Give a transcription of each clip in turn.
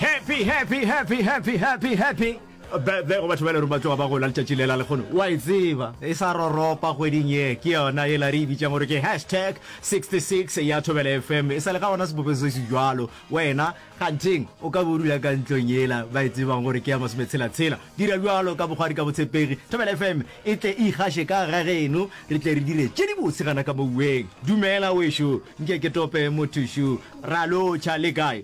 Happy, happy, happy, happy, happy, happy birthday go batho ba le reng ba tloga ba gola letšatši lela lekgono wa e tseba e sa roropa kgweding ye ke yona e la re e bitsang gore ke hashtag 66 ya thobela fm e sa le ga gona sebope se se jalo wena ganteng o ka bodula ka ntlong yela ba e tsebang gore ke ya masometshelatshela dira bjalo ka bogwadi ka botshepegi thobela fm e tle e ikgashe ka ga geno re tle re dire tše di botse gana ka mouweng dumela wešo nke ke tope mothušu ra lotšha le kae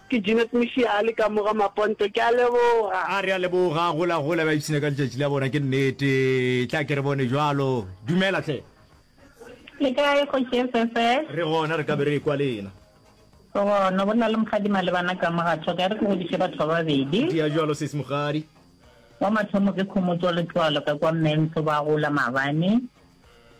Ke Jeanette Moshiya a le ka mo ga Maponto. Ke a leboga. A re a leboga, gola gola, ba ipshina ka letšatši la bona, ke nnete. Tla ke re bone bjalo. Dumela hle. Le kae Kgoši SSS? Re gona, re ka be re ekwa le ena. Go gona, go na le Mokgadi Malebana ka mo ga tho, ka re ke godiše batho ba babedi. Di ya bjalo sesi Mokgadi. Wa mathomo ke Khomotso Letlwalo ka kwa Mmento ba gola maabane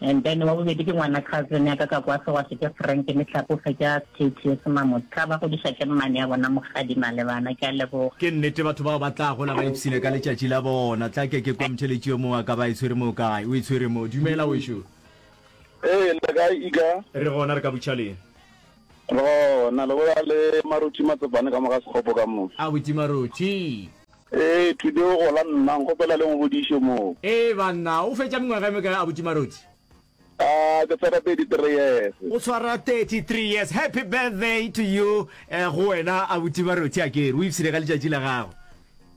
and then wa bobedi ke ngwana cousin ya ka ka kwa Sewase ke Frank Mehlape o fetša Kate Semamo tla ba godiša ke mmane ya bona Mokgadi Malebana ke a leboga. Ke nnete batho bao ba tla gola ba ipsile ka letšatši la bona. Tla ke ke kwa Mtheletši yo mongwe a ka ba a e tshwere moo kae? O e tshwere moo. Dumela wešu. Ee, le kae Ika? Re gona, re ka butša le. Re gona, le bolela le Maruthi Matsopane ka mo ga Sekgopo ka mo. Abuti Maruthi. Ee, today o gola nna, nkgopela le ngodiše moo. Ee, banna, o fetša mengwaga e mekae abuti Marothi? Aa, ke swara 33 years. O swara 33 years, happy birthday to you eh, go wena abuti Marothi akere, o ipshine ka letšatši la gago.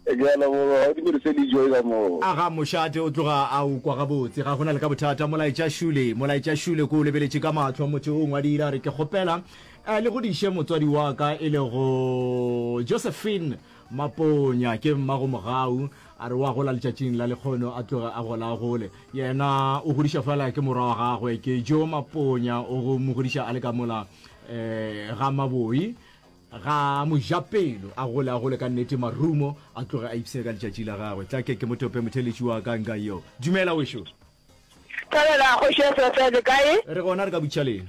Ke a leboga, ga o di berise le joy ka moo. Aga mošate o tloga a o kwa gabotse, ga go na le ka bothata. Molaetša Shule, Molaetša Shule, ko o lebeletše ka mahlo, motho o ngwadile a re, Ke kgopela eh, le godiše motswadi wa ka e lego Josephine Maponya ke mmago Mogau, a re wa gola letšatšing la lekgono a tloge a gola a gole. Yena o godiša fela ke morwa wa gagwe ke Joe Maponya o go mo godiša a le ka mola ga Maboi ga Mojapelo a gole a gole ka nnete marumo a tloge a ipsene ka letšatši la gagwe. Tla ke ke mo tope motheeletši wa ka nka yo. Dumela wešo. Thabela kgoši SFL le kae? Re gona re ka butšhaleng.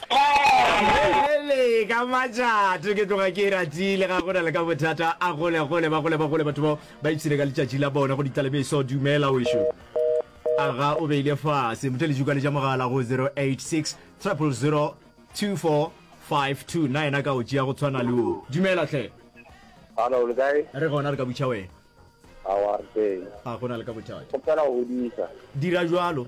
Bjale ka matšatši ke tloga ke e ratile ga go na le ka bothata a gole gole ba gole ba gole batho bao ba ipshile ka letšatši la bona go ditlalebeso dumela wešo aga o beile fase motho le jukale ja mogala go 086 000 2452 na yena ka o tšea go tshwana le o dumela tlhe Hello, le kae? re gona re ka butšha wena How are things? a go na le ka bothata Go fela go hodisa. dira jalo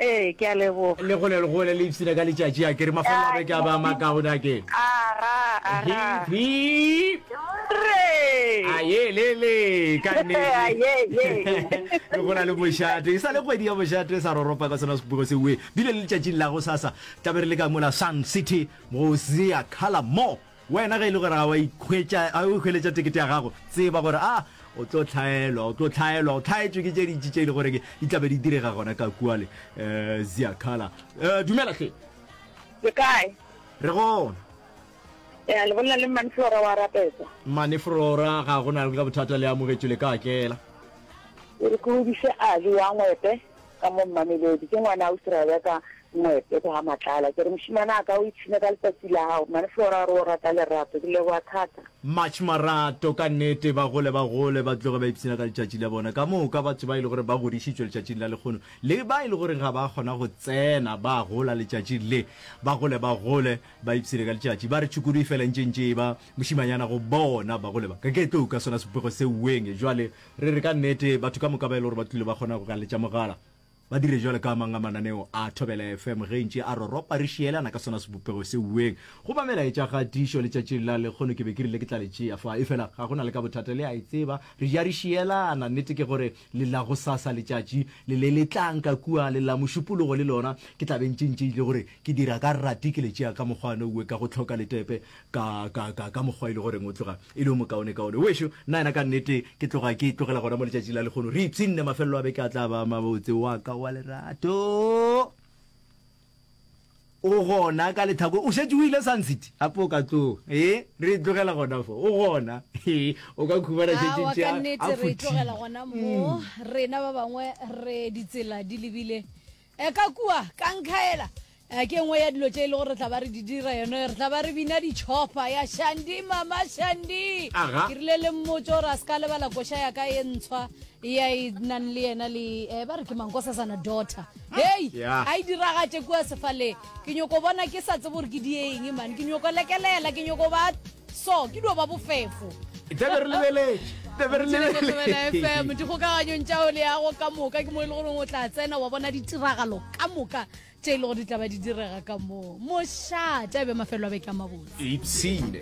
Ee, ke a leboga. Le gole le gole le ipshina ka letšatši a kere mafelelo a beke a ba a makaone a ke. Aga, aga. Hi, hi. A ye le le ka nnete. Re gola le mošate. E sa le kgwedi ya mošate sa roropa ka sona sepugo se we. Bile le letšatšing la go sasa tlabe re le ka mola Sun City go Zea Color Mall. Wena ge e le gore ga wa ikhwetša, ga o hweletša tekete ya gago, tseba gore a o tlo hlaelwa, o tlo hlaelwa, o hlaetšwe ke tše dintši tše e le gore ke di tlabe di direga gona ka kua le um Ziakala. Um dumela hle. Le kae? Re gona. Ya le bolela le mmane Flora wa rapetsa. Mmane Flora ga go na le ka bothata le amogetšwe le ka tlela. Re ke o bise Ali wa ngwepe. ka mo Mamelodi. Ke ngwana Ausi Rebecca Moepe kwa Matlala. Ke re, Mošemane wa ka, o ipshine ka letsatsi la gago. Mmane Flora a re, O rata lerato. Ke leboga thata. March Marato, Ka nnete, ba gole ba gole ba tloge ba ipshina ka letšatši la bona. Ka moka batho ba e le gore ba godišitšwe letšatšing la lekgono le ba e le gore ga ba kgona go tsena ba gola letšatšing le, ba gole ba gole ba ipshine ka letšatši. Ba re tšhukudu e fela e ntše e ntše e ba mošimanyana go bona. Ba gole ba ka ke tlo uka sona sepego se uweng jwale. Re re ka nnete batho ka moka ba e le gore ba tlile ba kgona go ka letša mogala ba dire jwalo ka a mang a mananeo a Thobela FM ge ntše a roropa re šielana ka sona sebopego se uweng go ba melaetša ga tiišo letšatšing la lekgono ke be ke rile ke tla le tšea fa efela ga go na le ka bothata le a e tseba re ja re šielana nnete ke gore le la go sasa letšatši le le le tlang ka kua le la mošupologo le lona ke tla be ntše ntše ile gore ke dira ka rati ke le tšea ka mokgwane uwe ka go tlhoka letepe ka, ka, ka, ka mokgwa e le goreng o tloga e le yo mokaonekaone. Weso, nna yena ka nnete ke tloga ke tlogela gona mo letšatšing la lekgono. Re ipshinne, mafelelo a beke a tla ba mabotse. Wa ka wa lerato o gona ka lethako. O šetše o ile Sun City gape o ka tloga. Ee, re e tlogela gona fo. O gona. Ee, o ka khumana šetše Awa, tša ka nnete a re e tlogela futhile. gona mo. Rena ba bangwe re ditsela di lebile. E ka kua ka nkhaela eh, ke nngwe ya dilo tše e le gore re tla ba re di dira yone re tla ba re bina ditšhopa ya shandi mama shandi Aga. ke rile le mmotse gore a se ka lebala koša ya ka e ntshwa ya e nang le yena le eh, ba re ke mankosasana daughter hei Ya. a e diragatše kua sefaleng ke nyoko bona ke sa tsebe gore ke di eng man ke nyoko lekelela ke nyoko ba so ke dio ba bofefo tlabe re lebeletše tlabe re lebeletšefm dikgokaganyong tša o leago ka moka ke mo e le goreng o tla tsena wa bona ditiragalo ka moka tše e le go di tlaba di direga ka moo mošate a be mafelo a beke a mabotse ipsene